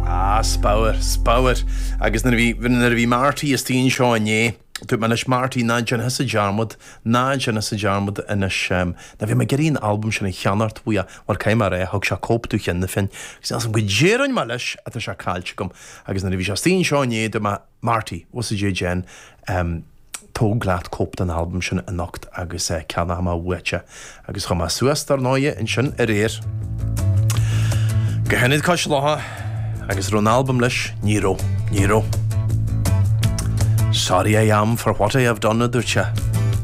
Ah, spabhar, spabhar. Agus nuair a bhí, nuair a bhí Marty istigh anseo inné, dúirt mé anois, Marty, ná déan thusa dearmad, ná déan thusa dearmad anois, ehm, ná bhí mé ag iarraidh an albam sin a cheannacht uaidh, mar chaill mé é, thug sé cóip domh cheana féin, agus níl 's agam goidé a rinne mé leis, ach tá sé caillte agam. Agus nuair a bhí sé istigh anseo inné, dúirt mé, Marty, as ucht Dé déan, em, tóg leat cóip den albam sin anocht agus eh, ceannóidh mé uait é agus chuaigh mé suas dar ndóigh ansin aréir. Go hIonad Cois Locha agus raibh an albam leis, ní raibh, ní raibh. Sorry I am for what I have done a dúirt sé.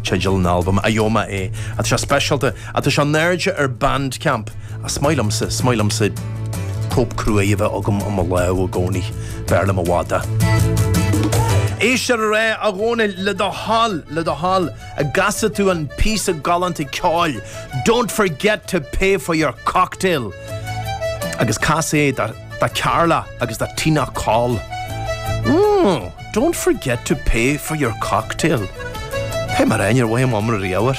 Teideal an albam, a Ioma é, a tá sé speisialta A tá sé in airde ar Bandcamp. A is maith liomsa, is maith liomsa cóip cruaidh a bheith agam i mo lámh i gcónaí. B'fhearr liom i bhfad é. Éist ar rté a Dhónaill, le do thoil, le do thoil, an gcasfaidh tú an píosa galánta ceoil, Don't Forget to Pay for Your Cocktail. Agus cas é do Carla agus do Tina Coll. Mmm. Don't forget to pay for your cocktail. Pé mar aon, ar mhaith am iomra riabhair.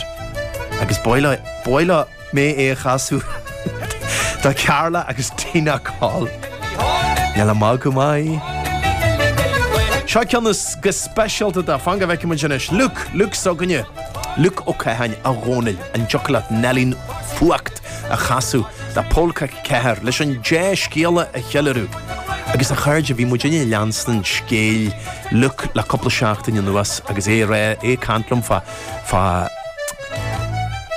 Agus ba mhaith liom é a chasadh do Carla agus Tina Coll. Níl a mbadh go maith. Seo ceann anois go speisialta do fan go bhfeicim muid anois. Luke, Luke s'againne. Luke Ó Catháin, a Dhónaill, an dtiocfadh leat Neilí an Fuacht. a chasadh le Polca 4 leis an dea-scéala a cheiliúradh agus a chairde bhí muidinne ag leanstan scéal Luke le cúpla seachtain anuas agus é aréir ag caint liom fá fá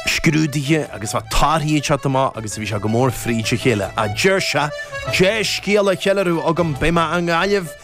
scrúduithe agus fá torthaí ag teacht amach agus bhí sé go mór fríd a chéile a deir sé dea-scéala a cheiliúradh agam beidh mé i nGaillimh